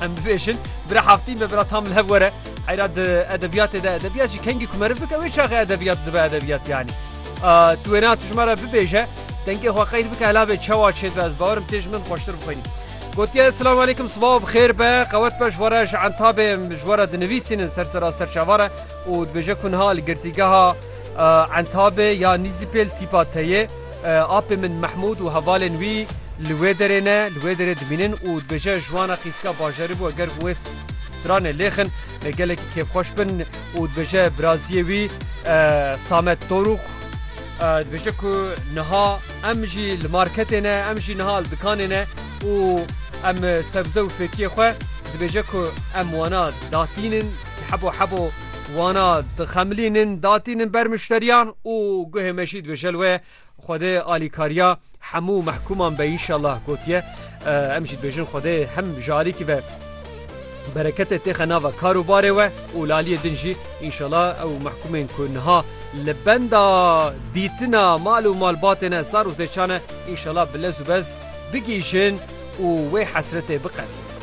Em bibêjin bira Haftin be bira tam li hev were. Heyra di edebiyatê de edebiyat jî kengî ku meriv bike wê çaxê edebiyat dibe edebiyat yanî. Tu wêna tu ji me re bibêje dengê xwe qeyr bike hela vê çawa çê dibe ez bawerim tê ji min xweştir bixwînî. Gotiye Selam aleykum sibaw bi xêr be qewet be ji we re ji entabê ji we re dinivîsînin ser sera serçava re û dibêje ku niha li girtîgeha entabê ya nîzîpêl tîpa teyê Apê min Mehmûd û hevalên wî li wê derê ne, li wê derê dimînin û dibêje ji wan re qîzika bajarî bû eger wê stranê lêxin gelekî kêfxweş bin û dibêje biraziyê wî Samet Dorûx dibêje ku niha em jî li marketê ne, em jî niha li dikanê ne û em sebze û fêkiyê xwe dibêje ku em wana datînin. Hebo hebo wana dixemilînin datînin ber muşteriyan û guhê me jî dibêje li wê Xwedê alîkariya hemû mehkûman be înşallah gotiye em jî dibêjin Xwedê hem ji alîkî ve bereketê têxe nava kar û barê we û li aliyê din jî înşallah ew mehkûmên ku niha li benda dîtina mal û malbatê ne sar û zêçan e înşallah bi lez û bez bigihîjin û wê hesretê biqedin.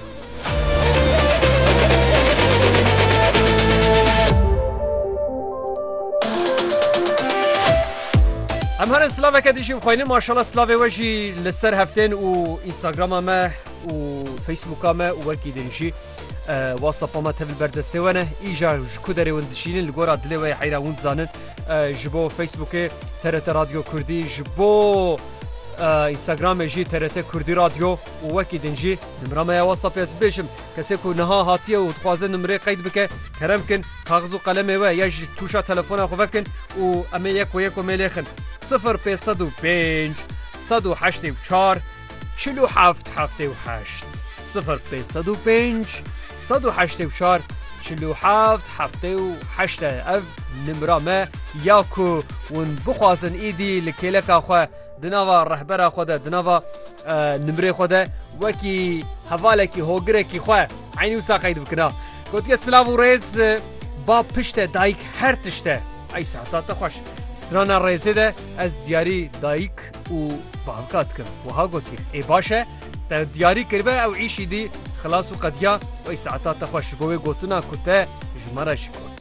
Em herên slaveke dijî xweynin maşala slavê we jî li ser heftên û Instagrama me û Facebooka me û wekî din jî WhatsAppa me tevil berdestê we ne îja ji ku derê win dişînin li gora dilê we heyra hûn zanin ji bo Facebookê TRT Radyo Kurdî ji bo Instagramê jî TRT Kurdî Radyo Û wekî din jî nimra me ya WhatsApp ez bibêjim, kesê ku niha hatiye û dixwaze nimrê qeyd bike, kerem kin kaxiz û qelemê we ya ji tûşa telefona xwe vekin û em ê yek we yek we mêlêxin, sifir pênc sed û pênc sed û heştê û çar çil û heft heftê û heşt, sifir pênc sed û pênc sed û heştê û çar çil û heft heftê û heşt e, ev nimra me ya ku hûn bixwazin îdî li kêleka xwe Di nava rehbera xwe de, di nava nimrê xwe de wekî hevalekî hogirekî xwe eynî wisa qeyd bikina. Gotiye silav û rêz ba pişte dayik her tişte. Ey sehta te xweş. Strana rêzê de ez diyarî dayik û bavka dikim. Wiha gotiye. Ê baş e te diyarî kiribe ew îşî dî xilas û qediya wey sehta te xweş ji bo wê gotina ku te ji me re ji got.